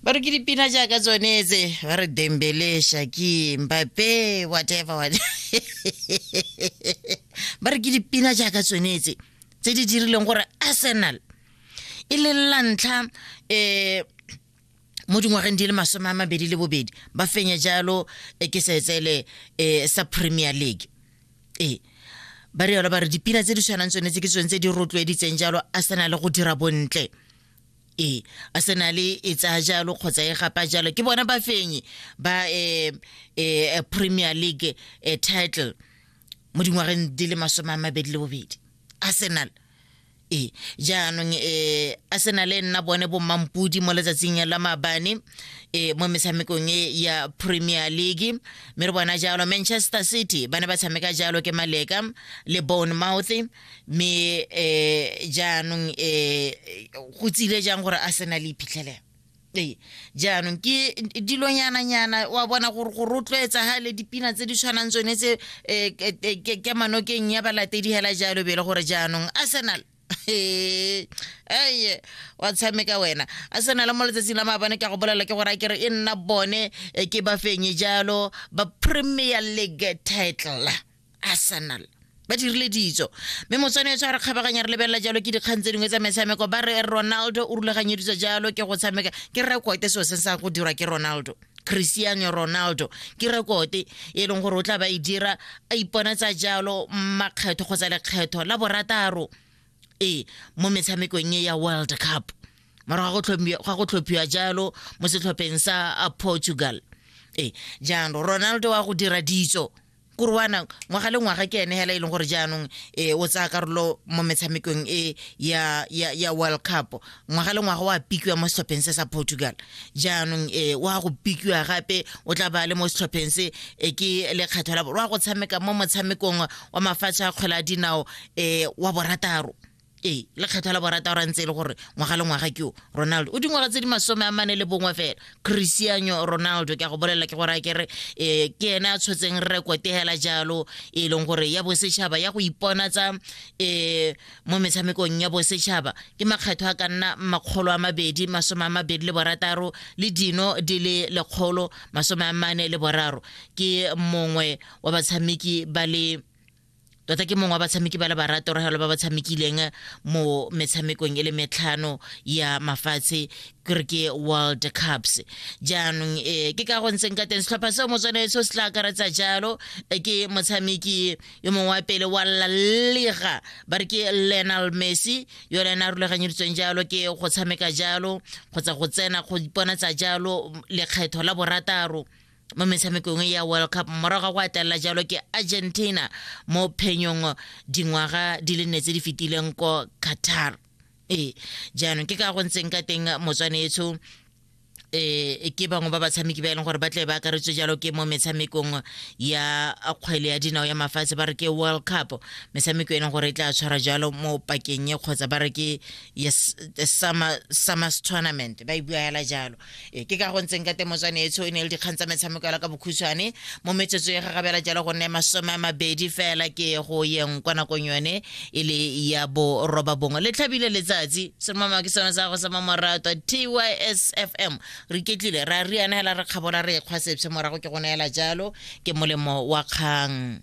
ba re ke dipina jaaka tsone tse ba re dembele shaki mbape whatever what ba re ke dipina jaaka tsone tse tse di dirileng gore arsenal e le la ntlha um mo dingwageng di le masome a mabedi le bobedi ba fenya jalo eh, ke setsele um sa premier league ee ba re yalo ba re dipina tse di tshwanang tsone tse ke tsone tse di rotloeditseng jalo a se na le go dira bontle ee a se na le e tsaya jalo kgotsa e gapa jalo ke bona ba fenye ba um um premier league um title mo dingwageng di le masome a mabedi le bobedi arsenal e jaanong e arsenal e nna bone bommampodi mo letsatsing la maabane e mo metshamekong e ya premier league mme re bona jalo manchester city ba ne ba tshameka jalo ke maleka le bone mouth mme um jaanong um go tsile jang gore arsenal e iphitlhelela ee jaanong ke dilonyananyana wa bona gore go rotloetsa ga le dipina tse di tshwanang tsone tse um ke manokeng ya balatedi hela jalo bele gore jaanong arsenal eye wa tshameka wena a sena le mo letsatsing la maabane ke a go bolela ke gore a kere e nna bone eh, ke bafenye jalo ba premier league title arsenal ba dirile ditso mme motswane tshwa re kgabaganya re lebelela jalo ke dikgang tse dingwe tsa metshameko ba re ronaldo o rulaganyeditswe jalo ke go tshameka ke rekote seo se sa go dirwa ke ronaldo cristiano ronaldo ke rekote e leng gore o tla ba e dira a ipona tsa jalo makgetho kgotsa lekgetho la borataro ee mo metshamekong e ya world cup morago ga go tlhophiwa jalo mo setlhopheng sa portugal ee jaanong ronaldo wa go dira ditso kurwana ngwaga le ngwaga ke ene hela e leng gore jaanong e o tsaya karolo mo metshamekong e ya ya ya world cup ngwaga le ngwaga wa pikiwa mo setlhopheng se sa portugal jaanong e wa go pikiwa gape o tla ba le mo setlhopheng se e ke lekgetho la wa go tshameka mo motshamekong wa mafatshe a kgwele a dinao e wa borataro ee lekgetho la borata ra ntse e le gore ngwaga le ngwaga ke o ronaldo o dingwaga tse di masome a mane le bongwe fela cristiano ronaldo ke a go bolelela ke gore a kere um ke ene a tshotseng rekote fela jalo e leng gore ya bosetšhaba ya go ipona tsa um eh, mo metshamekong ya bosetšhaba ke makgetho a ka nna makgolo a mabedi masome a mabedi le borataro le dino di le lekgolo masome a mane le boraro ke mongwe wa batshameki ba le tota ke mongwe wa batshameki ba le baratorogelo ba ba tshamekileng mo metshamekong e le metlhano ya mafatshe kere ke world cups jaanong um ke ka go ntseng ka teng setlhopha seo motswane seo se tla akaretsa jalo eh, ke motshameki yo mongwe wa pele wa lalega ba re ke lenal messi yo le ena a rulaganyeditsweng jalo ke go tshameka jalo kgotsa go tsena go iponatsa jalo lekgetho la borataro mo metshamekong ya world cup morago ga go atelela jalo ke argentina mo phenyong dingwaga di le nne tse di fetileng ko qatar ee jaanong ke ka go ntseng ka teng motswane etsho eh ke bangwe ba batshameki ba e leng gore ba tle ba akaretswe jalo ke mo metshamekong ya kgwele ya dinao ya mafatshe ba re ke world cup metshameko e leng gore e tla tshwara jalo mo pakeng e kgotsa ba re ke yes the summer summers tournament ba e buela jalo e ke ka go ntseng ka temotswane etsho e ne le dikgang tsa metshameko la ka bokhutshwane mo metsotso e gagabela jalo go nne masome a mabedi fela ke go yeng kwa nakong yone e le ya boroba bongwe le tlhabile letsatsi semama ke sone sa go sama morato tysfm re ketlile ra riana fela re kgabola re ekgwa sepse morago ke go neela jalo ke molemo wa kgang